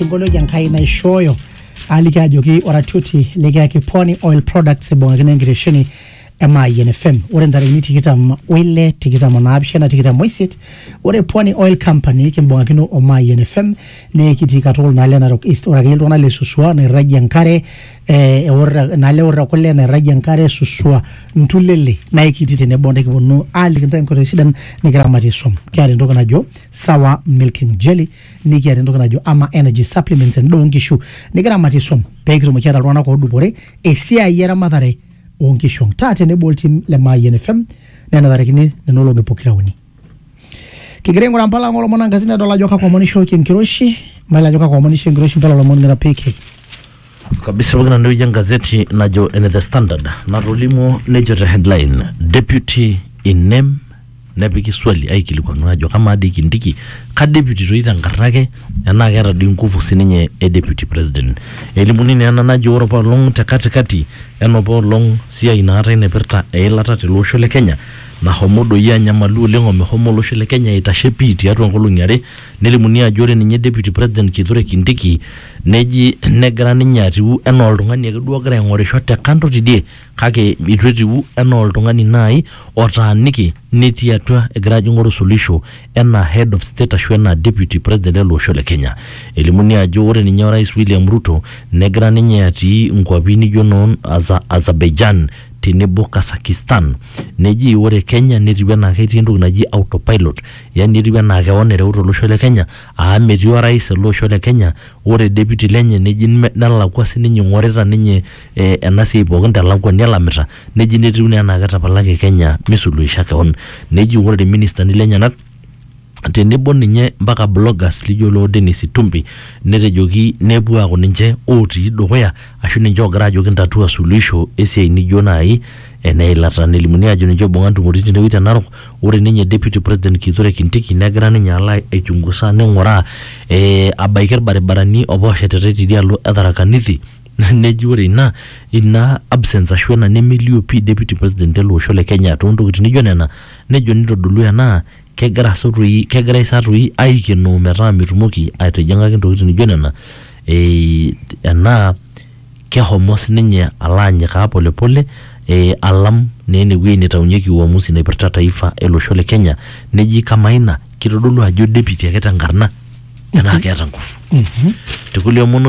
emboloki enkai naishooyo aliki ajoki oratioti likiyaki pwani oil products ibung'akino enkitesheni e Mayian FM ore ntarikini tikitam oile tikitam onaapishana tikitam oisiet ore pwani oil company kimbung'akino o Mayian FM nee kitii katukul naa le Narok East ore akeyie iltung'anak le Suswa nairragie enkare eh, eorra- naa le orra kule nairragie enkare Suswa Ntulele naa ekitii tenebo nikiponu aaliki ntae nkoitoi sidan nikiramatie swam kiata entoki najo sawa milking jelly nikiata entoki najo ama energy supplements endaa oonkishu nikiramatie swam pee kitumoki ataa iltung'anak oodupore esiai eramatare oonkishu ang taa tenebo oltim le Mayian FM nenatarakini nena olong'i pokira uni kigira aing'uraa mpala ang olomon ankasi nedol ajo kakwa omon ishooki enkiroshi mayiolo ajo kakwa omon ishoo enkiroshi mpala olomon ng'ira piki kabisa pooki nanu ewueji engazeti najo ene the standard natolimuo nejo te headline deputy in name nepiki swali aikilikuanu ajo kamaa dii kindiki ka deputy toi tenkarna ake enaa keeta dii nguvu sininye e deputy president elimuni naa ena najo ore apaelong te katikati enopa olong siai naatae naipirta eilata tele osho le kenya nahomo doi anyamalu oleng omehomo olosho le kenya aitashe pii tiatua nkolong'i are nelimuni ajo ore ninye deputy president kithure kindiki Neji negira ninye atiu anaa oltung'ani ake duo ogira aing'orisho te kando tidie kake eitu etiu anaa oltung'ani naai otaaniki netii atua egira ajo aing'oru suluhisho enaa head of state ashu enaa deputy president ele osho le Kenya. Elimuni ajo ore ninye orais William Ruto negira ninye atii inkuapi nijo noo Azerbaijan tenebo Kazakhstan. Neji ore Kenya netiu enaa ketii entoki naji autopilot yani etiu enaa keon ereuta olosho le Kenya Aa metii orais ele osho le Kenya ore deputy lenye neji nelakua sininye ing'orita ninye ena siai pookin te lakwani elamita neji netiu naa enaa ketapalaki Kenya misuluhisha kewon. Neji ore irministani lenyenak tenebo ninye mpaka bloggers lijo loo Dennis Itumbi netejoki nepuo aaku ninche otii dukuya ashu ninche oogira aajoki ntatua suluhisho esiai nijo nai Ene ilata nelimuni ajo ninche oibunga ntumoritin tenewueji te Narok. Ore ninye Deputy President Kithure Kindiki negira ninye alo aichungusa ninguraa eh, abaiki ilbaribarani apa oshetitae tidialo e Tharaka Nithi neji ore ina ina absence ashu ina nemelio pii Deputy President ele osho le Kenya toontokitin naijo nena nejo nitodolu ena kegira sa toi kegirai sa toi aikenoo metaa mitumoki aitijing'aki ntokitin nijo nena eh, enaa kehomo sininye alo anyikaa polepole eh, alam naa enewueji neitaunyeki uamusi naipirta taifa ele osho le Kenya neji kamaa ina kitodolu ajo deputy ake tenkarna enaa keeta nguvu tekulie omon otii